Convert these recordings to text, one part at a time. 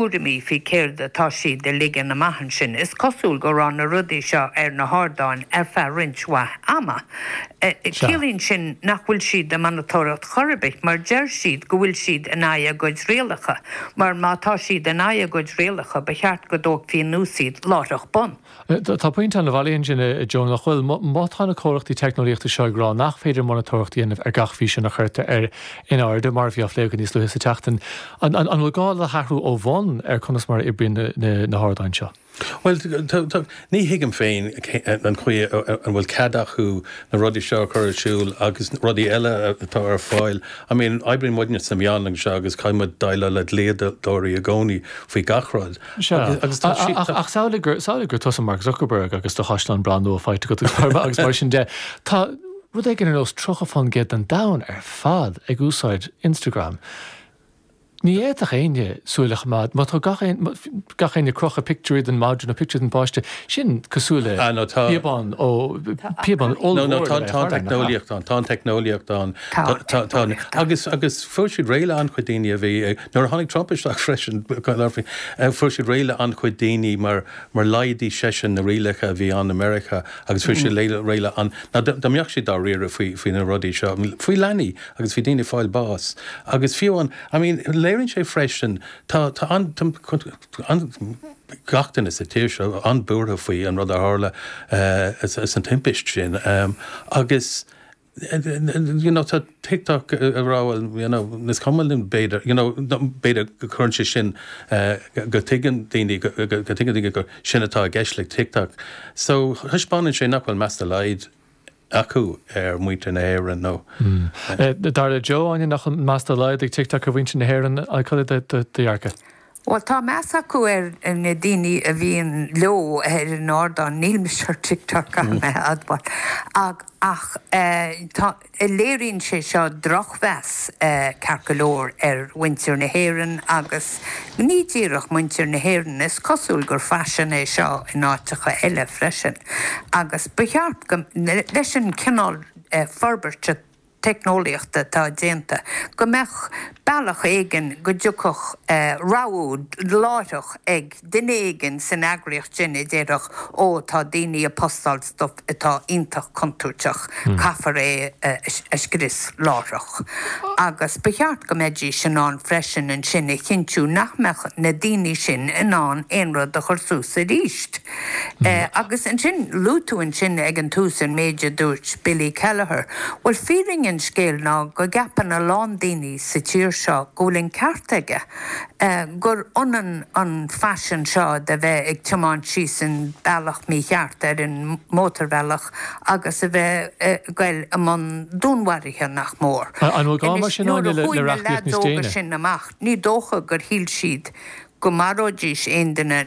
thuairimí faoi céard atá siad a ligean amach ansin. Is cosúil go raibh na rudaí seo ar na hardáin ar feadh roinnt mhaith ama. Sea. Ciallaíonn sin nach bhfuil siad ag monatóireacht chor ar bith, mar deir siad go bhfuil siad in aghaidh a gcuid rialacha, mar má tá siad in aghaidh a gcuid rialacha ba cheart go dtógfaí anuas iad láithreach bonn. Tá pointe ann bailí ansin, a Joe, nach bhfuil? Má tá na comhlachtaí teicneolaíochta seo ag rá nach féidir monatóireacht a dhéanamh ar gach físeán a chuirtear ar in airde, mar a bhí á phlé againn níos luaithe sa tseachtain, an bhfuil gá le hathrú ó bhun ar conas mar a oibríonn na hardáin seo? Bhuel, ní thuigim féin an chaoi a bhfuil cead acu na rudaí seo a chur ar siúl agus rudaí eile atá ar fáil. I mean, oibríonn muidne sna meáin anseo agus caithfidh muid déileáil le dlíodóirí i gcónaí faoi gach rud. Sea. Agus tá sí. Ach samhlaigh gur, samhlaigh gur tusa Mark Zuckerberg agus do chaisleán breá nua faighte agat i gCorcaigh agus mar sin de. Tá rud éigin ar nós 30 fán gcéad den domhan ar fad ag úsáid Instagram. Ní fhéadfadh éinne súil a choimeád, má tá gach aon, gach éinne ag crochadh pictiúirí den mhadra nó pictiúirí den bpáiste, sin cosúil le Ah no, tá. píobán ó, píobán No, no, ollmhór tá le bheith ag tá an tarraing, nach ea? teicneolaíocht ann, tá an teicneolaíocht ann. Tá, Tá, tá, tá. tá. Agus, agus fuair siad réidh le an-chuid daoine a bhí ag, Nuair a tháinig Trump isteach freisin, fuair siad réidh le an-chuid daoine mar laghdaigh seisean na rialacha a bhí ann i Meiriceá agus fuair siad réidh le an, na daoine a bhíodh dá riaradh faoi, faoi na rudaí seo, faoi leanaí agus faoi dhaoine ag fáil bás agus fiú an, I mean, léiríonn sé freisin, tá, tá an, an, gach duine sa tír seo an-bhuartha faoi an rud a tharla, sa timpist sin agus. you know, tá TikTok ag rá, bhuel, you know, is cuma linn, b'fhéidir, you know, b'fhéidir go gcuireann sé sin, eh, go dtuigeann daoine, go dtuigeann daoine gur sin atá i gceist le TikTok. So, thaispeánann sé nach bhfuil meas dá laghad acu ar mhuintir na hÉireann nó, eh. Eh, dar le Joe, Áine, nach bhfuil meas dá laghad ag TikTok ar mhuintir na hÉireann, eh, cad é do, do, do dhearcadh? Bhuel, tá meas acu ar na daoine a bhíonn leo ar an ardán, níl mise ar TikTok, caithfidh mé a admháil, ach ach tá, léiríonn sé seo drochmheas, ceart go leor, ar mhuintir na hÉireann agus ní díreach muintir na hÉireann, is cosúil gur faisean é seo in áiteacha eile freisin agus ba cheart go, leis an gcineál forbairt a. teicneolaíochta atá déanta, go mbeadh bealach éigin go dtiocfadh rabhadh láithreach ag duine éigin san eagraíocht sin a déarfadh, Ó, tá daoine ag postáil stuif atá iontach contúirteach, caithfear é a scrios láithreach. Agus ba cheart go mbeidís in ann freisin ansin a chinntiú nach mbeadh na daoine sin in ann aon rud a chur suas aríst. Agus ansin, luaigh tú ansin ag an tús an méid a dúirt Billy Kelleher. Bhuel, fírinne an scéil ná go gceapann a lán daoine sa tír seo go bhfuil an ceart aige, gur ionann an faisean seo de bheith ag tiomáint síos an bealach mícheart ar an mótarbhealach agus a bheith ag goil i mbun dúnmharaithe, nach mór. An bhfuil gá mar sin againne le reachtaíocht níos déine? Anois, nuair a chuaigh na leads óga sin amach, ní dócha gur shíl siad go maróidís aon duine.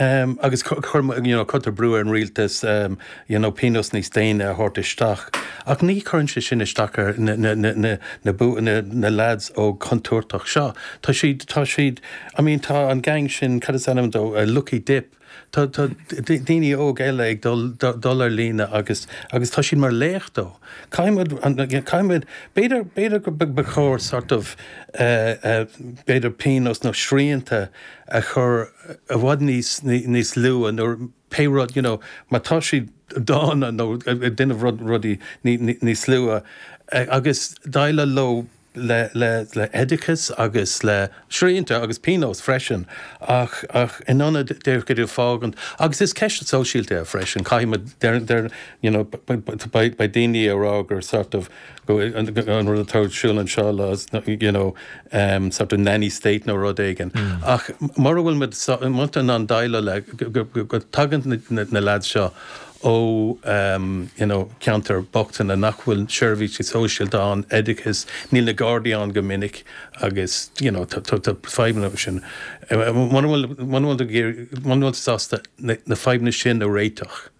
Um, agus cu, cur, you know, cuirtear brú ar an rialtas, um, you know, pionós níos déine a thabhairt isteach. Ach ní chuireann sé sin isteach ar na, na, na, na, na, bu, na, na lads óga contúirteacha seo. Tá siad, tá siad, I mean, tá an gang sin, cad is ainm dó, uh, Lucky Dip, tá, tá d- daoine óg eile ag dul, dul, dul ar líne agus, agus tá siad mar leacht dó. Caithfimid, an- an- caithfimid, b'fhéidir, b'fhéidir go b- ba chóir sort of, uh, uh, b'fhéidir pionós nó srianta a chur i bhfad níos, níos luaithe, nuair, pé rud, you know, má tá siad dána nó ag déanamh rud, rudaí ní, ní, níos luaithe, agus déileáil leo le, le, le oideachas agus le srianta agus pionóis freisin, ach, ach in ionad díreach iad a fhágaint, agus is ceist sóisialta é freisin, caithfidh muid, déarfainn, déarfainn, you know, beidh, beidh daoine ag rá gur sort of, an rud atá ar siúl anseo le you know em sort of nanny state nó rud éigin ach mura bhfuil muid in ann déileáil le go tagann na lads seo ó em you know ceantair bhochtaine nach bhfuil seirbhísí sóisialta ann, oideachas, níl na Gardaí ann go minic agus you know tá tá tá fadhbanna acu sin. Mura bhfuil mura bhfuil ag iarraidh mura bhfuil sásta na fadhbanna sin a réiteach,